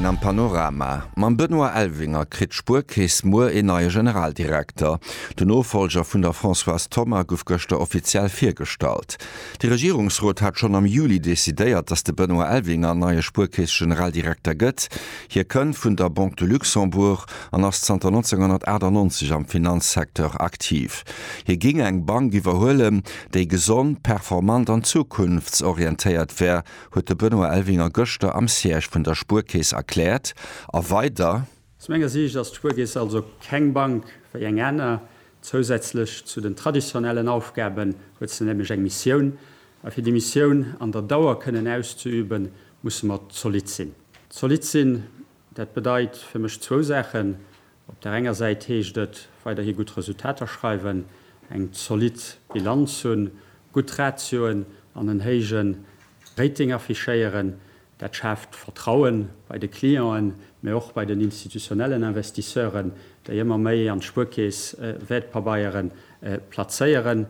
Am Panorama mam Benoît Elvinger kritt d'Spuerkeess muer een neie Generaldirekter. De Nofollger vun der Françoise Thoma gouf gëschter offiziell virgestallt. De Regierungsrot hat schonn am Juli decidéiert, datt de Benoît Elvinger neie Spuerkeess-Generaldirekter gëtt. Hie kënnt vun der Banque de Luxembourg an ass zanter 1998 am Finanzsecteur aktiv. Hie géing eng Bank iwwerhuelen, déi gesond, performant an zukunftsorientéiert wär, huet de Benoît Elvinger gëschter am Siège vun der Spuerkeess erkläert. A weider. Aus menger Siicht ass d'Spuerkeess also keng Bank wéi eng aner. Zousätzlech zu den traditionellen Aufgaben huet se nämlech eng Missioun. A fir déi Missioun an der Dauer kënnen auszeüben, musse mer zolidd sinn. Zolidd sinn, dat bedeit fir mech zwou Saachen, Op der enger Säit heescht et, weiderhi gutt Resultater schreiwen, eng zolidd Bilanz hunn, gutt Ratioen an en héije Rating affichéieren. Dat schaaft Vertraue bei de Clienten, mä och bei den institutionellen Investisseuren, déi ëmmer méi an d'Spuerkeess Wäertpabeiere plazéieren.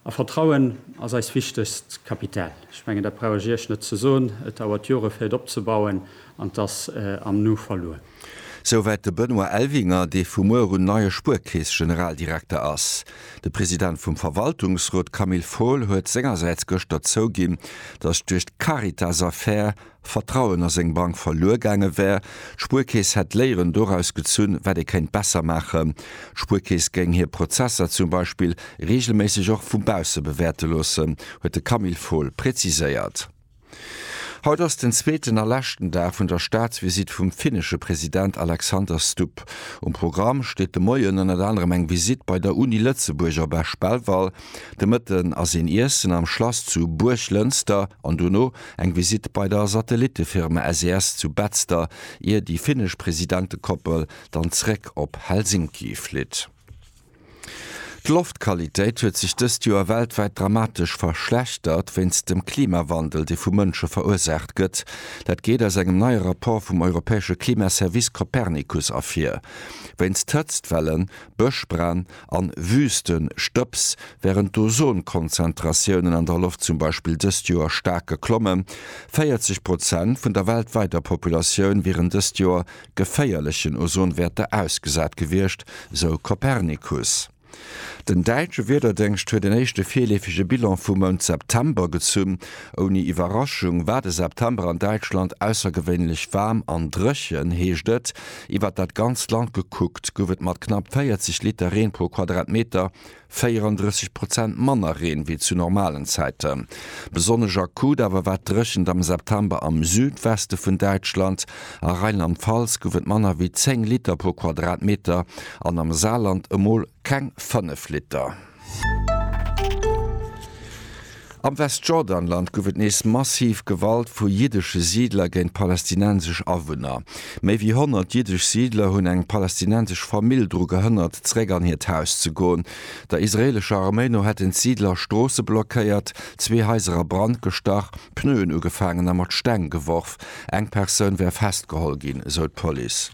A Vertrauen ass eist wichtegst Kapital. Ech mengen, dat brauch ech Iech net ze soen. Et dauert Jore fir et opzebauen an et ass am Nu verluer. Souwäit de Benoît Elvinger, dee vu muer un neie Spuerkeess-Generaldirekter ass. De President vum Verwaltungsrot Camille Fohl huet sengersäits gëschter zouginn, datt duerch d'Caritas-Affär Vertrauen a seng Bank verluer gaange wär. D'Spuerkeess hätt Léieren doraus gezunn, wat ee kéint besser maachen. D'Spuerkeess géing hir Prozesser zum Beispill reegelméisseg och vu bausse bewäerte loossen, huet de Camille Fohl präziséiert. Haut ass den zweeten a leschten Dag vun der Staatsvisitt vum finnesche President Alexander Stubb. Um Programm steet de Moien ënnert anerem eng Visitt bei der Uni Lëtzebuerg op Esch-Belval. De Mëtten ass een Iessen am Schlass zu Buerglënster an dono eng Visitt bei der Satellittefirma SES zu Betzder, ier déi finnesch Presidentekoppel dann zréck op Helsinki flitt. D'Loftqualitéit huet sech dëst Joer weltwäit dramatesch verschlechtert, wéinst dem Klimawandel, dee vu Mënsche verursaacht gëtt. Dat geet aus engem neie Rapport vum europäesche Klimaservice Copernicus ervir. Wéinst Hëtztwellen Bëschbränn an Wüstestëbs, wärend d'Ozonkonzentratiounen an der Loft zum Beispill dëst Joer staark geklommen. 40 Prozent vun der weltwäiter Populatioun wieren dëst Joer geféierlechen Ozonwäerter ausgesat gewiescht, sou Copernicus. Den däitsche Wiederdéngscht huet en éischte virleefege Bilan vum Mount September gezunn. Ouni Iwwerraschung war de September an Däitschland aussergewéinlech waarm an dréchen, heescht et. Iwwert dat ganzt Land gekuckt gouf et mat knapp 40 Liter Reen pro Quadratmeter 34 Prozent manner Reen wéi zu normalen Zäiten. Besonnesch akut awer war d'Dréchent am September am Südweste vun Däitschland. A Rheinland-Pfalz gouf et manner wéi 10 Liter pro Quadratmeter an am Saarland emol keng 5 Liter. Am Westjordanland gouf et nees massiv Gewalt vu jiddesche Siidler géint palästinensesch Awunner. Méi wéi 100 jiddesch Siidler hunn eng palästinensesch Famill dru gehënnert, zeréck an hiert Haus ze goen. Der israeelescher Arméi no hätten d'Siidler Stroosse blockéiert, zwee Haiser a Brand gestach, Pneuen ugefaangen a mat Steng geworf. Eng Persoun wär festgeholl ginn, esou d'Police.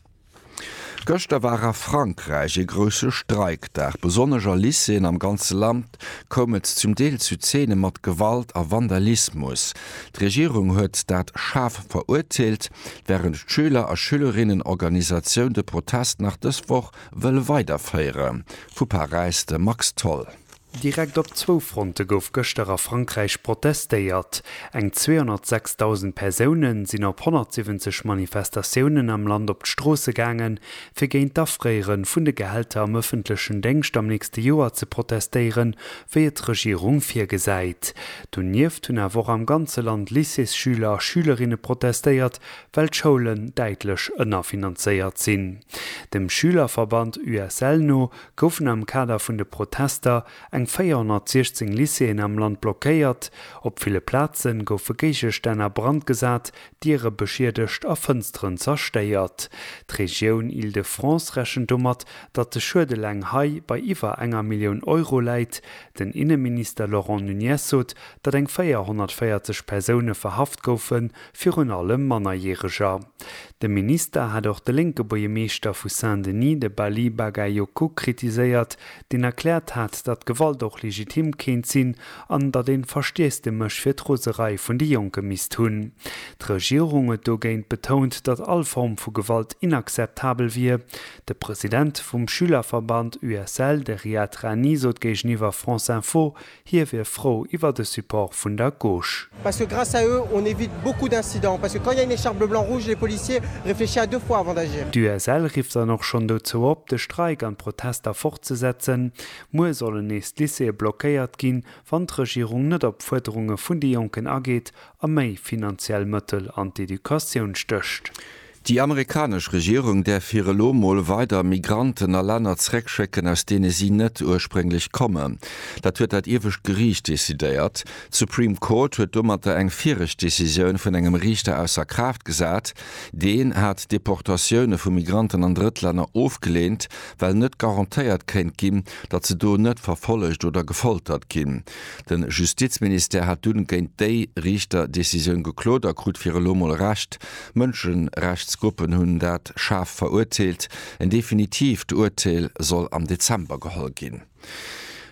Gëschter war a Frankräich ee grousse Streikdag. Besonnesch a Lycéeën am ganze Land koum et zum Deel zu Zeene mat Gewalt a Vandalismus. D'Regierung huet dat schaarf verurteelt, wärend d'Schüler a Schülerinnenorganisatioun de Protest nach dës Woch wëll weiderféieren. Vu Paräis de Max Tholl. Direkt op zwou Fronte gouf gëschter a Frankräich protestéiert. Eng 206.000 Persoune sinn op 170 Manifestatiounen am Land op d'Stroosse gaange fir géint d'Afréiere vun de Gehälter am ëffentlechen Déngscht am nächste Joer ze protestéieren, wéi et d'Regierung virgesäit. Donieft hunn awer och am ganze Land Lycéesschüler a schülerinne protestéiert, well d'Schoulen däitlech ënnerfinanzéiert sinn. Dem Schülerverband USL no goufen am Kader vun de Protester eng 416 Lycéeën am Land blockéiert, op ville Plaze goufe Géigestänn a Brand gesat, Diere beschiedegt a Fënsteren zerstéiert. D'Regioun Île-de-France rechent domat, datt de Schued eleng hei bei iwwer enger Millioun Euro läit. Den Inneminister Laurent Nunez sot, datt eng 440 Persoune verhaft goufen, virun allem Mannerjäreger. De Minister hat och de lénke Buergermeeschter vu Saint-Denis, de Bali Bagayoko, kritiséiert, deen erkläert hat, datt Gewalt och legitim kéint sinn an datt een Verstiess de Mësch fir d'Roserei vun de Jonke misst hunn. D'Regierung huet dogéint betount, datt all Form vu Gewalt inakzeptabel wier. De President vum Schülerverband USL, de Riad Rani, sot géigeniwwer France Info, Hie wier frou iwwer de Support vun der Gauche. Parce que grâce à eux, on évite beaucoup d'incidents. Parce que quand il y a une écharpe bleu blanc rouge, les policiers réfléchissent à deux fois avant d'agir. D'USL rifft dann och schonn dozou op, de Streik an d'Protester fortzesetzen. Muer sollen nees d'Lycéeë blockéiert ginn, wann d'Regierung net op d'Fuerderunge vun de Jonken ageet a méi finanziell Mëttel an d'Educatioun stécht. Déi amerikanesch Regierung däerf fir elo mol weider Migranten a Länner zréckschécken, aus deene si net ursprénglech kommen. Dat huet dat iewescht Geriicht decidéiert. D'Supreme Court huet domatter eng viregt Decisioun vun engem Riichter ausser Kraaft gesat. Deen hat Deportatioune vu Migranten an Drëttlänner ofgeleent, well net garantéiert kéint ginn, datt se do net verfollegt oder gefoltert ginn. De Justizministère hat dunn géint déi Riichter-Decisioun geklot a krut fir elo mol Recht. Mënscherechtsgruppen hunn dat schaarf verurteelt. En definitiivt Urteel soll am Dezember geholl ginn.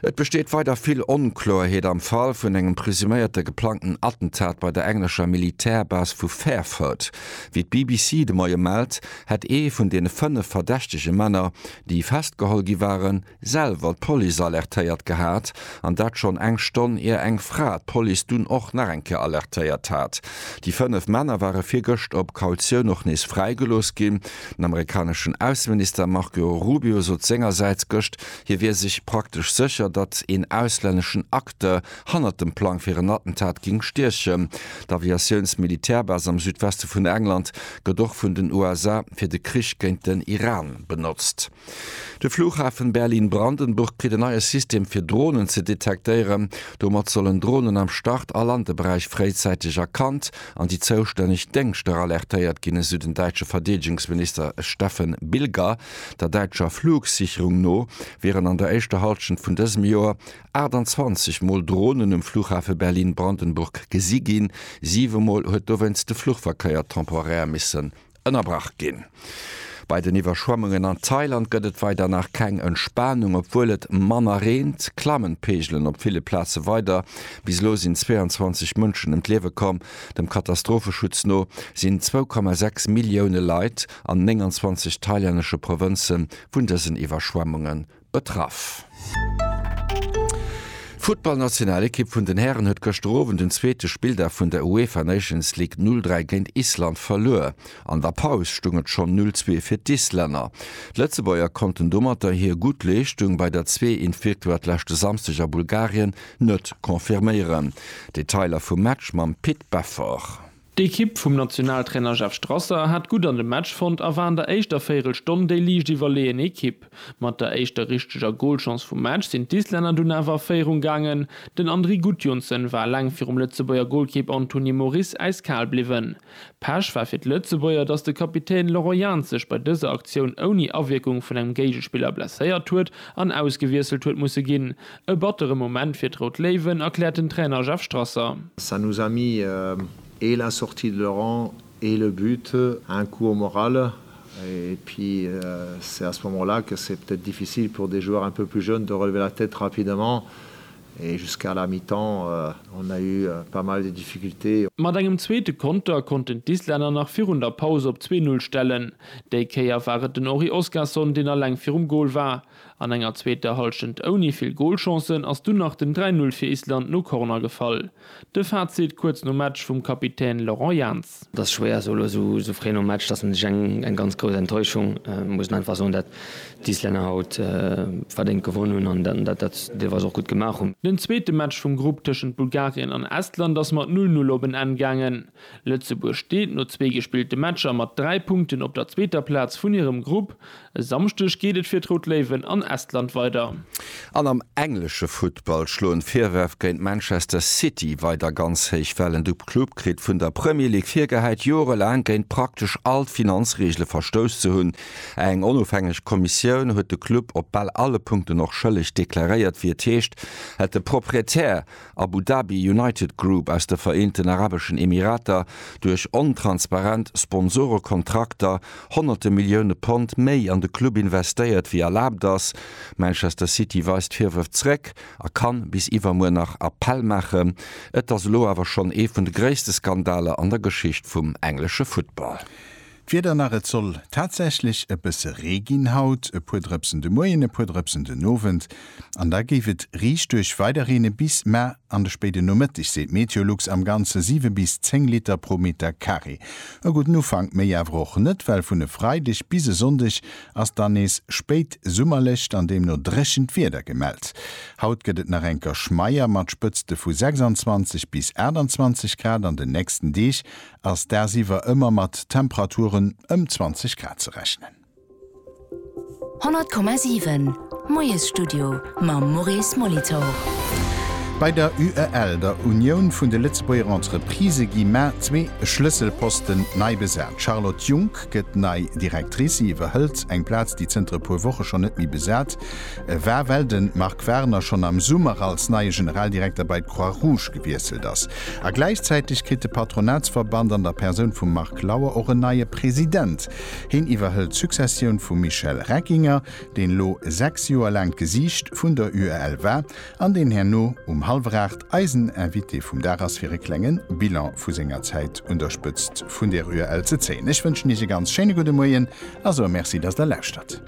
Et besteet weider vill Onkloerheet am Fall vun engem presuméierte geplangten Attentat bei der englescher Militärbase vu Fairford. Wéi d'BBC de Moie mellt, hätt ee vun deene fënnef verdächtege Männer, déi festgeholl gi waren, selwer d'Police alertéiert gehat, an dat schonn eng Stonn ier eng Fra d'Police dunn och nach eng Kéier alertéiert hat. Déi fënnef Männer ware virgëscht op Kautioun och nees fräigelooss ginn. Den amerikaneschen Ausseminister Marco Rubio sot sengersäits gëscht, hie wier sech praktesch sécher, datt een auslänneschen Acteur hannert dem Plang fir en Attentat géing stiechen. D'Aviatiouns-Militärbase am Südweste vun England gëtt och vun den USA fir de Krich géint den Iran benotzt. De Flughafen Berlin-Brandenburg kritt en neie System fir Dronen ze detektéieren. Domat sollen Dronen am Start a Landeberäich fréizäiteg erkannt an déi zoustänneg Déngschter alertéiert ginn, esou den däitsche Verdeedegungsminister Steffen Bilger. Der däitscher Flugsicherung no wieren an der éischter Hallschent vun dësem Joer 28 Mol Dronen um Flughafe Berlin-Brandenburg gesi ginn. Siwe Mol huet dowéinst de Fluchverkéier temporär misse Ënnerbrach ginn. Bei den Iwwerschwemmungen an Thailand gëtt et weider nach keng Entspanung. Obwuel et manner reent, klammen d'Peegelen op ville Plaze weider. Bis elo sinn 22 Mënschen ëm d'Liewe komm. Dem Katastropheschutz no sinn 2,6 Millioune Leit an 29 thailännesche Provënze vun dësen Iwwerschwemmunge Betraff. D'Futtballnationalekipp vun den Hären huet gëschter Owend den zweete Spilldag vun der UEFA Nations League 0, 3 géint Island verluer. An der Paus stoung et schonn 0, 2 fir d'Islänner. D'Lëtzebuerger konnten domatter hir gutt Leeschtung bei der Zwee-int-Victoire leschte Samsdeg a Bulgarien net confirméieren. Detailer vum Match mam Pit Beffort. D'Ekipp vum Nationaltrainer Jeff Strasser hat gutt an de Match fonnt a war an der éischter Véirelstonn déi liicht iwwerleeën Ekipp. Mat der éischter richteger Golchance vum Match sinn d'Islänner dunn awer a Féierung gaangen. Den Andri Gudjohnsen war eleng virum Lëtzebuerger Golkipp Anthony Moris äiskal bliwwen. Pech war fir d'Lëtzebuerger, dass de Kapitän Laurent Jans sech bei dëser Aktioun ouni Awierkung vun engem Géigespiller blesséiert huet an ausgewiesselt huet musse ginn. E battere Moment fir d'Rout Léiwen, erkläert den Trainer Jeff Strasser. Ça nous a mis et la sortie de Laurent et le but un coup au moral et puis c'est à ce moment-là que c'est peut-être difficile pour des joueurs un peu plus jeunes de relever la tête rapidement et jusqu'à la mi-temps on a eu pas mal de difficultés. Mat engem zweete Konter konnten d'Islänner nach virun der Paus op zwee Null stellen. Déi Kéier war et den Henri Oskarsson, deen alleng virum Gol war. An enger zweeter Hallschent ouni vill Golchancen ass dunn nach den 3 Null fir Island no Corner gefall. De Fazit kuerz nom Match vum Kapitän Laurent Jans. Et ass schwéier esou elo esou fréi nom Match, dass een sech eng ganz grouss Enttäuschung, muss een einfach soen, dat d'Islänner haut verdéngt gewonn hunn an dat dat se deelweis och gutt gemaach hunn. Den zweete Match vum Grupp tëschent Bulgarien an Estland ass mat Null Null op en Enn gaangen. Lëtzebuerg steet no zwee gespillte Matcher mat 3 Punkten op der zweeter Plaz vun hirem Grupp. E Samschdeg geet et fir d'Rout Léiwen an Estland weider. An am englesche Futtball schloen d'Virwërf géint Manchester City weider ganz héich Wellen. De Club kritt vun der Premier League virgehäit, jorelaang géint praktesch all d'Finanzreegele verstouss ze hunn. Eng onofhängeg Kommissioun huet de Club op bal alle Punkten och schëlleg deklaréiert, wéi et heescht, hätt de Proprietär Abu Dhabi United Group aus de Vereenten Arabeschen Emirater duerch ontransparent Sponsorekontrakter honnerte Millioune Pond méi an de Club investéiert wéi erlaabt ass. Manchester City weist d'Virwërf zréck a kann bis iwwermuer nach Appell maachen. Et ass elo awer schonn ee vun de gréisste Skandaler an der Geschicht vum englesche Futtball. D'Wieder nach, Et soll tatsächlech e bësse Ree ginn haut, e puer Drëpsen de Muerjen, e puer Drëpsen den Owend an da géif et riicht duerch weider reene bis mar an de spéide Nomëtteg, seet Meteolux. Am Ganze 7 bis 10 Liter pro Meter Carré. E gudden Ufank, méi awer och net, well vun e Freideg bis e Sonndeg ass dann nees spéit summerlecht an deemno dréchent Wieder gemellt. Haut gëtt et nach eng Kerschmeier mat Spëtzte vu 26 bis 28 Grad, an den nächsten Deeg ass dagsiwwer ëmmer mat Temperaturen ëm 20 Grad ze rechnen. 100,7 Moiesstudio mam Maurice Molitor. Bei der UEL, der Unioun vun de Lëtzebuerger Entreprisë, gi mar zwee Schlësselposten nei besat. D'Charlotte Junck gëtt nei Directrice. Si iwwerhëlt eng Plaz, déi zënter e puer Woche schonn net méi besat war, well de Marc Warner schonn am Summer als neie Generaldirekter bei d'Croix-Rouge gewiesselt ass. A gläichzäiteg kritt de Patronatsverband an der Persoun vum Marc Lauer och en neie President. Heen iwwerhëlt d'Successioun vum Michel Reckinger, deen elo 6 Joer laang d'Gesiicht vun der UEL war an deen herno um hallwer 8 eisen Invité vum Dag ass fir e klengen Bilan vu senger Zäit un der Spëtzt vun der UEL ze zéien. Ech wënschen Iech e ganz schéine gudde Moien a soe Merci, dass Der lauschtert.